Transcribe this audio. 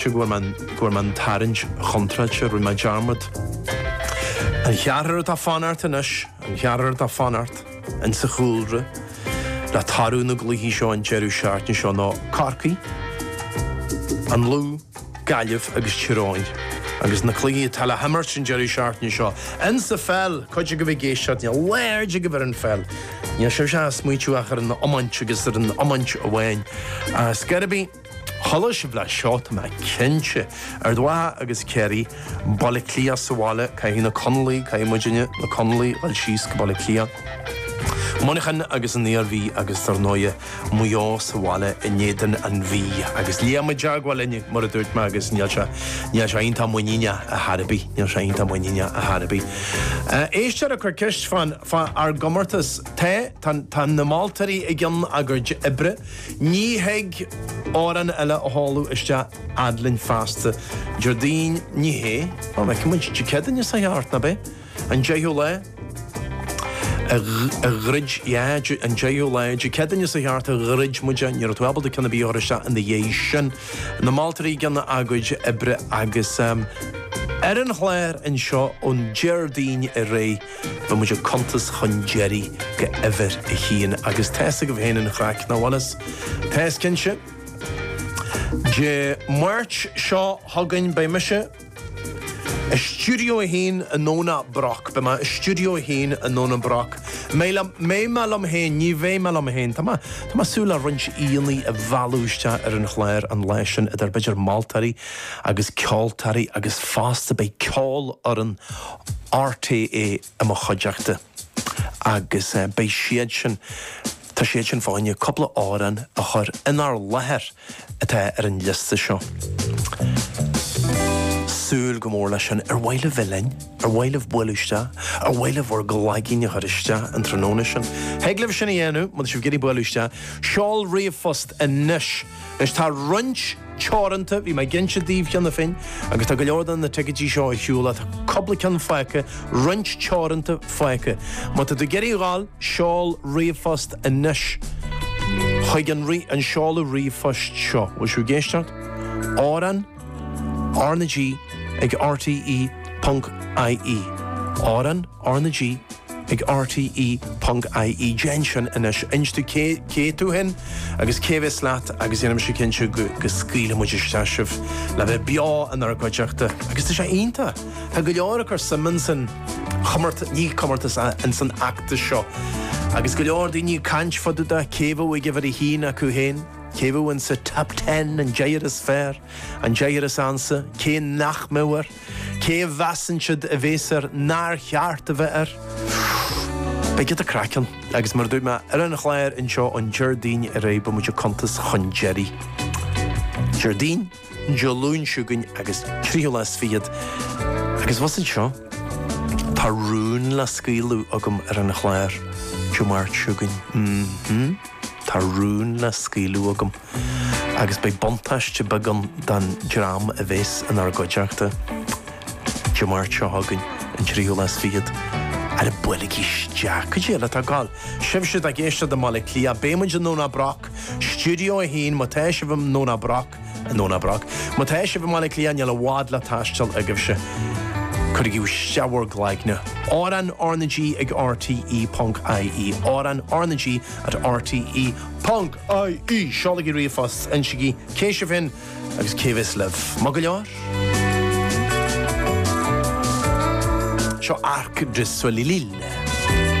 sé go bhfuair mé an tarraingt chontráilte, rinne mé dearmad. An ceathrar atá ag fanacht anois, an ceathrar atá ag fanacht in sa chúlra le toradh na gcluichí seo an deireadh seachtaine seo ná Corcaigh, An Lú, Gaillimh agus Tír Eoghain. Agus na cluichí atá le himirt an deireadh seachtaine seo in sa pheil, cuid agaibh ag éisteacht, níl aird agaibh ar an pheil, níl sibh ach ag smaointiú ach ar an iomáint agus ar an iomáint amháin. Is gairid. Chuala sibh uilig seo, tá mé cinnte. Ard Mhacha agus Ciarraí, Baile Átha Cliath sa bhaile, caithfidh na Conallaigh, caithfidh muidinne, na Conallaigh, dul síos go Baile Átha Cliath. Muineachán agus an Iarmhí agus dar ndóighe, Maigh Eo sa bhaile in éadan an Mhí. Agus Liam i dteagmháil linn, mar a dúirt mé, agus níl sé, níl sé iontach muiníneach ar chor ar bith, níl sé iontach muiníneach ar chor ar bith. Éisteoir ag cur ceist fán, fá ár gcomórtas. Tá, tá, tá na moltóirí i gcionn a gcuid oibre. Ní thig amhrán eile a sheoladh isteach fhad linn feasta. Déardaoin, Ní hé, ná feiceann muid. Dé Céadaoin, seo a chuaigh thart, ná b'é? An deichiú lá, a dhruid, yeah, an deichiú lá, Dé Céadaoin, seo a chuaigh thart, a dhruid muid é. Ní raibh tú ábalta ceann ar bith a chur isteach ina dhiaidh sin. Na moltóirí ag déanamh a gcuid oibre agus ar an chlár anseo ón Déardaoin ar aghaidh, Beidh muid ag cuntas chun deiridh go huimhir a haon agus tá's agaibh féin an chraic, nach bhfuil a fhios? Tá's cinnte! Dé Máirt seo chugainn beidh mise i Stiúideo a hAon i nDomhnach Broc, beidh mé i Stiúideo a hAon i nDomhnach Broc, mbeidh liom, mbeidh mé liom féin, ní bheidh mé liom féin, tá mé, tá mé ag súil le roinnt aíonna a mhealladh isteach ar an chlár an lá sin idir, b'fhéidir moltóirí agus ceoltóirí agus fosta beidh Ceolfhoireann RTÉ i mo chuideachta agus beidh siad sin, tá siad sin fá choinne, cúpla amhrán a chur inár láthair atá ar an liosta seo. Súil go mór leis sin. Ar mhaith libh bheith linn? Ar mhaith libh bualadh isteach? Ar mhaith libh bhur gcloigín a chur isteach an tráthnóna sin? Thig libh sin a dhéanamh, má tá sibh ag iarraidh bualadh isteach. Seol ríomhphost anois! Anois tá roinnt teoranta, bhí mé ag inse daoibh cheana féin, agus tá go leor de na ticéidí seo ar shiúl, tá cupla ceann fágtha, roinnt teoranta fágtha. Má tá tú ag iarraidh a dh'fháil, seol ríomhphost anois chuig an seoladh ríomhphoist seo. Bhfuil sibh ag éisteacht? Amhrán? R na G ag RTÉ ponc IE Amhrán R na G ag RTÉ ponc IE Déan sin anois, inis domh cé cé tú féin agus cé bhéas leat agus déanfaidh mise cinnte go go scaoilfidh muid isteach sibh le bheith beo inár gcuideachta agus tá sé iontach, tá go leor ag cur suim in san chomórtas, ní comórtas ach in san fheachtas seo agus go leor daoine ag caint fá dtaobh de cé bheadh ag uimhir a haon acu féin. Cé bheadh insa Top Ten, an deichniúr is fearr, an deichniúr is ansa, cé nach mbeadh air? Cé a mheasann siad a bhéas air nár cheart a bheith air? Beidh giota craic ann agus, mar a dúirt mé, ar an chlár anseo ón Déardaoin ar aghaidh beidh muid ag cuntas chun deiridh. Déardaoin? Dé Luain chugainn agus tríú lá is fichead agus abhus anseo tá rún le scaoileadh agam ar an chlár Dé Máirt seo chugainn. M-hm, tá rún le scaoileadh agam agus beidh buntáiste beag ann don dream a bhéas inár gcuideachta Dé Máirt seo chugainn, an tríú lá is fichead. Ara buailigí isteach! Cad é eile atá ag gabháil? Sibhse atá ag éisteacht i mBaile Átha Cliath, beidh muid i nDomhnach Broc! Stiúideo 1 Má tá sibh i nDomhnach Broc, i nDomhnach Broc? Má tá sibh i mBaile Átha Cliath, chan fhuil i bhfad le taisteal agaibhse, cuirigí isteach bhur gcloigne! Amhráin RnaG ag RTÉ ponc IE, Amhráin RnaG at RTÉ ponc IE! Seolaigí ríomhphost, insigí cé sibh féin agus cé a bheas libh. Maith go leor. Seo Arc de Soleil.